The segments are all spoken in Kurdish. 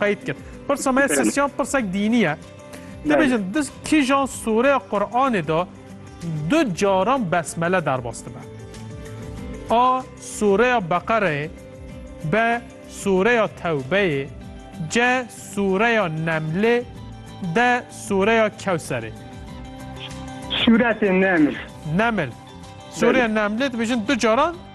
Qeyd kir. Pirsa me sesyan pirsek dînî ye. Te bêjin di kîjan sûreya Quranê de du caran besmele derbas dibe? A sûreya Beqereyê, B sûreya Tewbeyê, C sûreya Nemlê, D sûreya Kewserê. Sûretê Neml. Neml. Sûreya Nemlê dibêjin du caran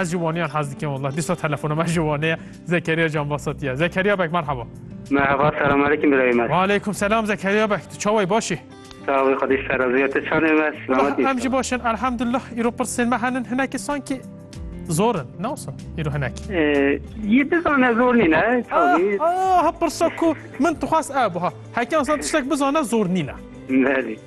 Ez ji waniyan hez dikim wallah. Dîsa telefona me ji wanê ye. Zekeriya Canbasat ye. Zekeriya bek merhaba. Merhaba selam aleyküm birayê me. Aleyküm selam Zekeriya bek. Tu çawa yî baş î? Sağ ol xwedî ser ez ya te çanê me selamet Em jî baş in elhamdullah. Îro pirsên me henin hinekî sankî zor in. Ne wisa îro hinekî. Yî bizane zor nîne. Ha pirsa ku min dixwest ew buha. Hekan san tiştek bizane zor nîne. Belê.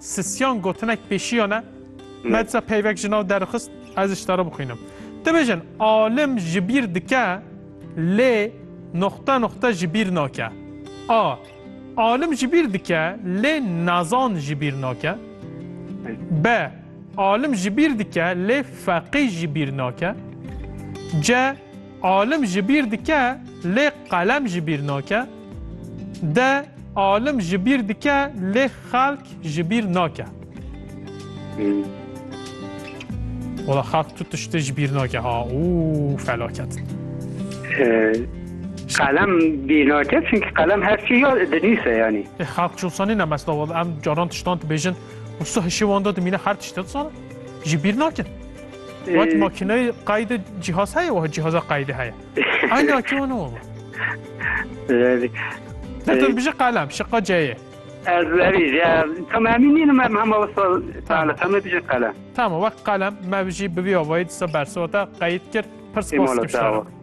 Sisyan gotinek pêşiya ne. Me disa peyvek ji nav derxist ez ji te re bixwînim. Tu bêjin alim ji bîr dike lê noxte noxte ji bîr nake. A. Alim ji bîr dike lê nezan ji bîr nake. B. Alim ji bîr dike lê feqî ji bîr nake. C. Alim ji bîr dike lê qelem ji bîr nake, de alim ji bîr dike lê xelk ji bîr nake. Wala xelk tu tiştê ji bîr nake ha û felaket. Qelem bîr nake çünkü qelem her çî ya dinîse yanî. E xelk çolsa nîne mesela wala em caran tiştan dibêjin û su hişê wan de dimîne her tişt de sana ji bîr nakin. Wat makineyê qayde cihaz heye wa cihaza qayde heye. Ayna ki wan owa. Zerî. Ne tu bije qalem şiqa ceye. Ez zerî je tam hemî nîn me hema wisa tale tam bije qalem. Tamam wek qalem me bijî bivî avayî disa bersota qeyîd kir pirs kos kişara.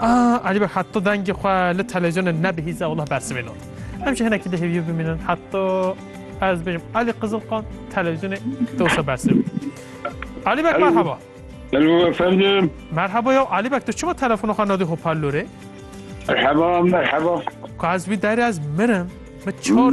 Aa Alî bak heta dengê xwe li televîzyonê nebihîze wela bersivê lot. Em jî hinekî di hêvî bimînin heta ez bêjim Alî Qizilqan televîzyonê dewsa bersivê. Alî bak merhaba. Hello efendim. Merhaba ya Alî bak tu çima telefona xwe nadî hoparlorê? Merhaba merhaba. Ku ez wî derê ez mirim. Min çar